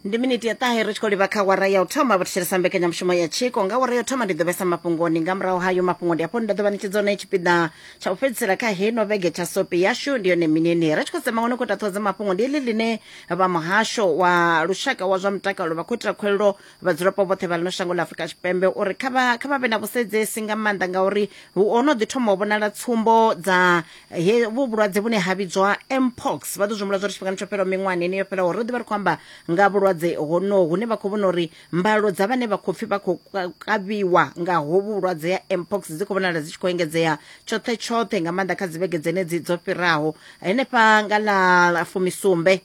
ndi miniti ya ṱahe ri tshi khou livha kha wara ya u thoma vho thetshelesa mbekanyamushumo ya tshiko nga wara ya u thoma ndi ḓo vhesa mafhungoni nga murahu hayo mafhungo ndi afho ndi ḓo ḓo vha ṋetshedza hone tshipiḓa tsha u fhedzisela kha heno vhege tsha sopi yashu ndi yone minini ri tshi khou sema ngone khou taṱhodza mafhungo ndi iḽi ḽine vha muhasho wa lushaka wa zwa mutakalo vha khou itela khuwelelo vhadzulapo vhoṱhe vha ḽino shango ḽa afurika tshipembe uri kha vha kha vha vhe na vhusedzesi nga maanḓa ngauri hu ono ḓi thoma u vhonala tsumbo dza he vhu vhulwadze vhune ha vhidzwa mpox vha ḓo zwi humbula zwa uri tshifhingani tsho fhelaho miṅwahani ine yo fhelaho ro ḓi vha ri khou amba nga vhulwadze honoho hune vha khou vhona uri mbalo dza vhane vha khou pfi vha khou ka- kavhiwa nga hovhu vhulwadze ya mpox dzi khou vhonala dzi tshi khou engedzea tshoṱhe tshoṱhe nga maanḓa kha dzivhege dzenedzi dzo fhiraho henefha nga ḽa fumisumbe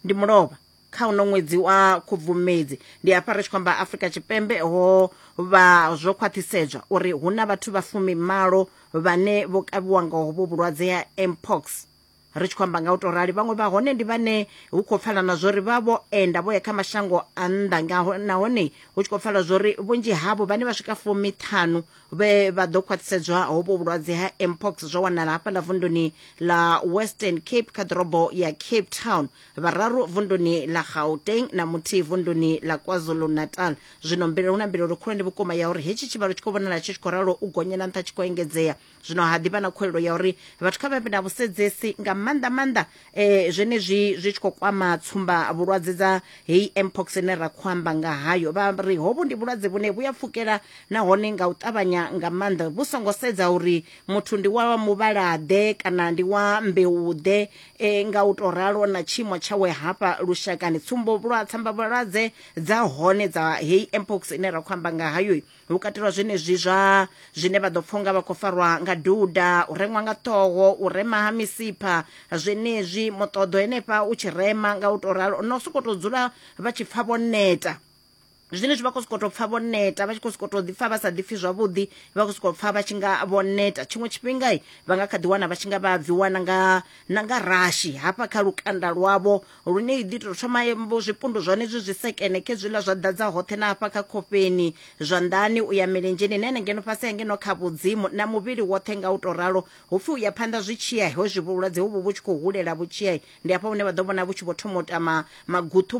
ndi mulovha kha uno ṅwedzi wa khubvumedzi ndi hafha ri tshi khou amba afrika tshipembe ho vha zwo khwaṱhisedzwa uri hu na vhathu vha fumi malo vhane vho kavhiwa nga hovho vhulwadze ha mpox ri tshi khou amba nga u to rali vhaṅwe vha hone ndi vhane hu khou pfala na zwori vha vho enda vho ya kha mashango a nnḓa ngaho nahone hu tshi khou pfala zwori vhunzhi havho vhane vha swika fumi ṱhanu vhe vha ḓo khwaṱhisedzwa hovho vhulwadze ha mpox zwo wanala hafhaḽa vunduni ḽa western cape kha ḓorobo ya cape town vhararu vunduni ḽa gauteng na muthihi vunduni ḽa kwazulu-natal zwino mbilelo hu na mbilelo khulwane vhukuma ya uri hetshi tshivhalo tshi khou vhonala tshi tshi khou ralo u gonyela nṱha tshi khou engedzea zwino ha ḓivha na khuelelo ya uri vhathu kha vha vhe na vhusedzi nga maanḓa maanḓa um zwenezwi zwi tshi khou kwama tsumba vhulwadze dza heyi mpox ine ra khou amba nga hayo vha ri hovhu ndi vhulwadze vhune vhu ya pfukela nahone nga u ṱavhanya nga maanḓa vhu songo sedza uri muthu ndi wa muvhalaḓe kana ndi wa mbeuḓe e nga u tou ralo na tshiimo tshawe hafha lushakani tsumbo vhulwa tsambavhulwadze dza hone dza heyi mpox ine ra khou amba nga hayo hu katelwa zwenezwi zwa zwine vha ḓo pfha unga vha khou farwa nga duda u reṅwa nga ṱhoho u rema ha misipha zwenezwi muṱoḓo henefha u tshi rema nga u tou ralo na u sokou tou dzula vha tshi pfha vho neta zwine zwi vha khou sokou tou pfha vho neta vha tshi khou sokou tou ḓipfha vha sa ḓipfhi zwavhuḓi vha khou sokou pfha vha tshi nga vho neta tshiṅwe tshifhinga vha nga kha ḓi wana vha tshi nga vha bvi wana nga na nga rashi hafha kha lukanda lwavho lune i ḓi tou thoma zwipundu zwone zwi zwi sekene khe zwiḽa zwa ḓadza hoṱhe na hafha kha khofheni zwanḓani u ya milenzheni na ngeno fhasi ya ngeno kha vhudzimu na muvhili woṱhe nga u tou ralo hu pfhi u ya phanḓa zwi tshiya ho zwi vhulwadze hovhu vhu tshi khou hulela vhu tshiya ndi hafha hune vha ḓo vhona vhu tshi vho thoma u tama maguṱhu